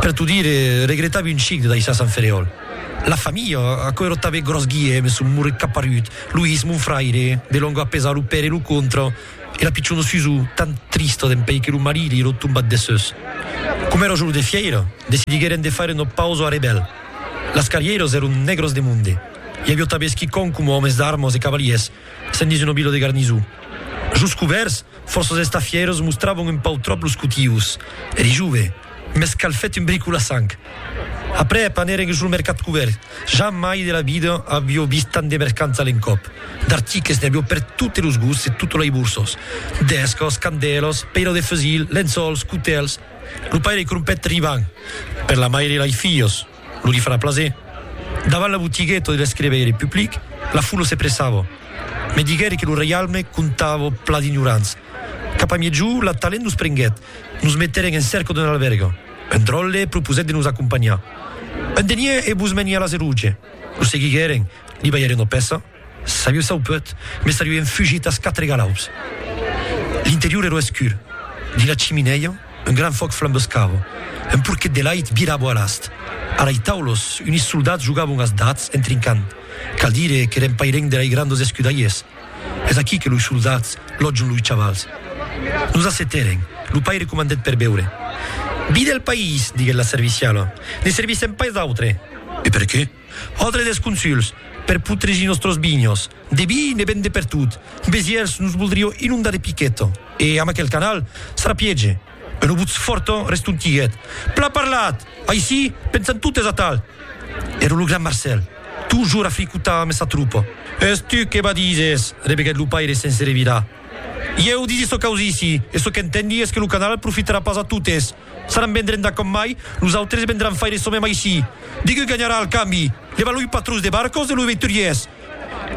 Per t'o dire, regretavi un chic de daissar Sant Ferèol. La familha, aquò èra tanben gròs Guièm, son moret caparut, Loís, mon fraire, de lònga a pesar lo per e lo contra, e la pichona Susò, tan trista dempèi que lo marit li èra tombat dessús. Coma èra jorn de fièira, decidiguèren de faire una pausa a Rebèl. Las carrièras èran nègras de monde. I aviá tanben esquicòm coma òmes d'armas e cavalièrs, sent dins una vila de garnison. Jos cubèrs, Fòrços estafieros mostravan un pauc tròp los cotius. Eri jove, mès cal fèt un bric o la sang. Aprèp anèren jos lo mercat cubèrt. Jamai de la vida avió vist tant de mercants a l'encòp. D'artiques n'i avió per totes los gusts e totes lei borsos. D'escòs, candèlos, peirò de fusils, lençòls, cotèls. Lo paire crompèt Rivan, per la maire lei filhos. Lo li farà plaser. Davant la botigueta de l'escriveire public, la foula se pressava. Me diguère que lo reialme comptava pla d'ignorants. Cap a miègjò, la talent nos prenguèt. Nos metèren en cèrca d'un albèrga. Un dròlle proposèt de nos acompanhar. Un denier e vos meniá a la Zeruge. Lo seguiguèren, li balhèren una pèça. S'aviu saupuèt, mès aviu enfugit as quatre galaups. L'interior èra escur. Dins la chiminèia, un gran fòc flambescava. Un porquet de lait virava a l'ast. A lei taulos, unis soldats jogavon as dats en trincant. Cal dire qu'èren pairenc de lei grandes escudalhers. Es aquí que loi soldats lotjon loi chavals. Nos assetèren. Lo paire comandèt per beure. Vi del país, diguèt la serviciala. Ne servissèm pas d'autre. E perqué? Òdre dels consuls, per putregir nòstros vinhos, de vi ne ven de pertot, Besièrs nos voldrió inondar de piquet, e amb aquel canal sarà piège, un obutz fòrt restontiguèt, Plan parlat! Aicí pensan totes atal! Ero lo gran Marcèl, totjorn a fricotar amb sa tropa. Es tu que badises! rebeguèt lo paire sense revirar. Ieu disi çò qu'auissi, e çò qu'entendi es que lo canal profitarà pas a totes, S'aran vendrenda com mai, nosautres vendran faire çò mem aicí. Digue ganharà al cambi, levar loi patrons de barcos e loi veituriers.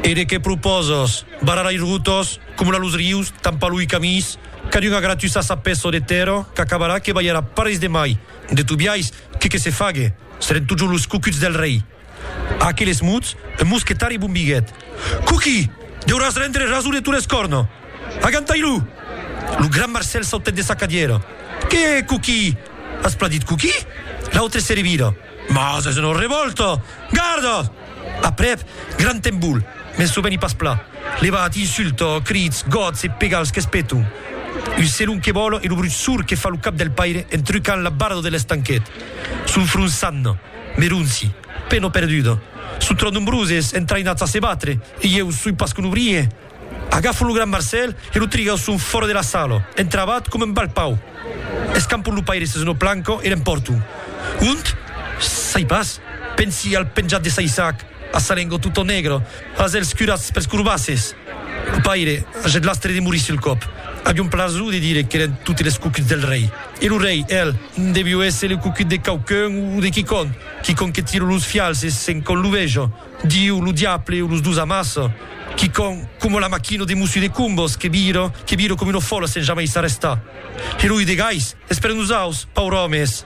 E de qué proposes? Barrar ai rotos, comular los rius, tampar loi camins, cadun a gratuçar sa peço de terra qu'acabarà que balharà parelhs de mai. De tobiais, que que se fague, seren totjorn los cocuts del rei. A aqueles mots, un mosquetari bombiguèt. Coquí! Deuràs rendre raso de Torres Corno! Agantai-lo! Lo gran Marcèl sautèt de sa cadièra. Qué, Coquí? As plan dit Coquí? L'autre se revira. Mas es una revòlta! Garda! Aprèp, gran tembol, mès lo veni pas pla. Levat, insulta, crits, gots e pegals qu'es peton. Un selon que vòla e lo brut sord que fa lo cap del paire en trucant la barada de l'estanquet. Son fronçant. Meronci, pena perduda. Son tròp nombroses, entraïnats a se batre, e ieu soi pas que lo brien. Agafan lo gran Marcèl e lo trigausson fòra de la sala, entravat coma un balpau. Escampon lo paire sus una planca e l'empòrton. Ont? Sai pas. Pensi al penjat de saissac, a sa lenga tota negra, Pas els curats pels corbasses! Lo paire agèt l'astre de morir sul còp. Avion plaso de dire qu'èren totes les cucuts del rei. E lo rei, el, devió èsser lo cucut de quauqu'un o de quicòm, quicòm que tiro los fials e sent com lo vejo, Diu, lo diable o los dos amassa, quicòm coma la maquina de Mussu de Cumbos que vira, que vira com una fòla sent jamai s'arrestar. E lo Udegais? Es per nosaus, pauròmes!